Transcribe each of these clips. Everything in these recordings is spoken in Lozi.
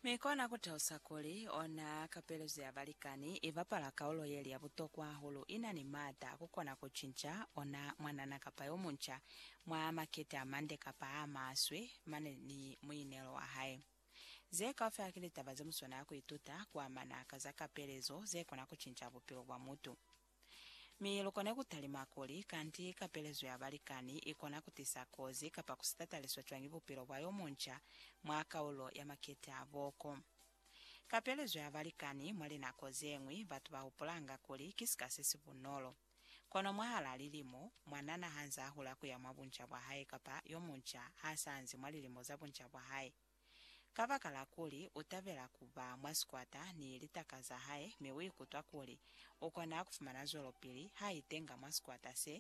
Mi kona ku tausa kuli ona kapelezo ya balikani i bapala kaulo ye li ya butokwa hahulu, i na ni maata a ku kona ku cinca ona mwanana kapa yo munca mwa makete a mande kapa a maswe mane ni muinelo wa hae. Ze kaufela ki litaba ze mu swanela ku ituta ku amana ka za kapelezo ze kona ku cinca bupilo bwa mutu. Mi lukone kutalima kuli, kanti kapelezo ya balikani ikona kutisa kozi kapa kusitataliswa cwañi bupilo bwa yomunca mwa kaulo ya makete a boko? Kapelezo ya balikani mwa linako zeñwi batu bahupulanga kuli ki sika sesibunolo. Kono mwahalaa lilimo, mwanana hanzaa hula kuya mwa bunca bwahae kapa yomunca hasaanzi mwa lilimo za bunca bwahae, Kabakala kuli u tabela ku ba mwa sikwata ni litaka za hae mi u ikutwa kuli u kona ku fumana zwelopili ha itenga mwa sikwata se,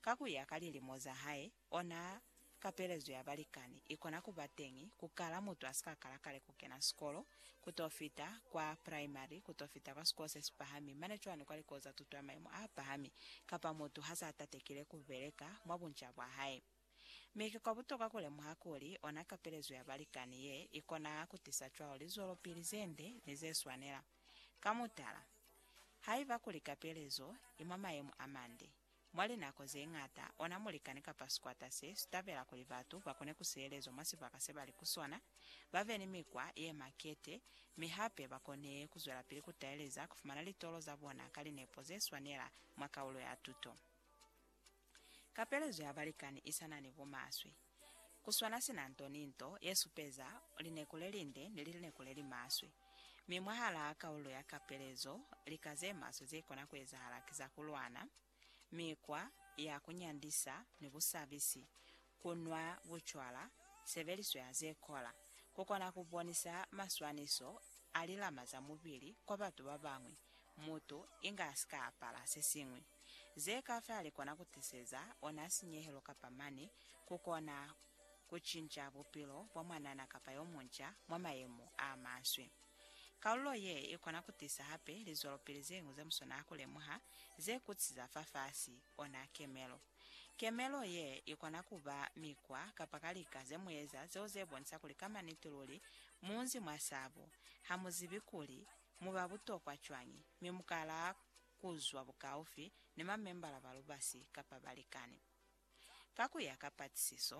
ka ku ya ka lilimo za hae, ona kapelezo ya balikani i kona ku ba teñi ku kala mutu a si ka kala kale ku kena sikolo, ku t'o fita kwa praimari, ku t'o fita kwa sikolo se si pahami, mane cwani kwa likolo za tuto ya maimo a pahami, kapa mutu ha s'a tatekile ku beleka mwa bunca bwa hae. Mi ki kwa butokwa ku lemuha kuli ona kapelezo ya balikani ye i kona ku tisa cwalo lizwelopili ze nde ni ze swanela. Ka mutala, haiba kuli kapelezo i mwa mayemo a mande, mwa linako ze ñata ona mulikani kapa sikwata se si tabela kuli batu ba kone ku sielezwa mwa sibaka se ba li ku sona, ba be ni mikwa ye makete, mi hape ba kone ku zwelapili ku taeleza ku fumana litolo za bona ka linepo ze swanela mwa kaulo ya tuto. Kapelezo ya balikani i sa na ni bumaswe, ku swana sina nto ni nto ye supeza lineku le linde ni lineku le li maswe. Mi mwahalaa kaulo ya kapelezo, lika ze maswe ze kona ku ezahala ki za ku lwana, mikwa ya ku nyandisa, ni busabisi, ku nwa bucwala, sebeliswa ze kola, ku kona ku bonisa maswaniso a lilama za mubili kwa batu ba bañwi, mutu inga a si ka apala se siñwi, ze ka fa li kona ku tiseza ona sinyehelo kapa mane ku kona ku cinca bupilo bwa mwanana kapa yo munca mwa mayemo a maswe. Kalulo ye i kona ku tisa hape lizwelopili ze ñwi ze muswanaa ku lemuha ze kuti za fafasi ona kemelo. Kemelo ye i kona ku ba mikwa kapa ka lika ze mu eza zeo ze bonisa kuli ka maniti luli mu nzi mwa sabo, ha mu zibi kuli mu ba butokwa cwañi, mi mu kala ku zwa bukaufi ni mamembala ba lubasi kapa balikani. Ka ku ya ka patisiso,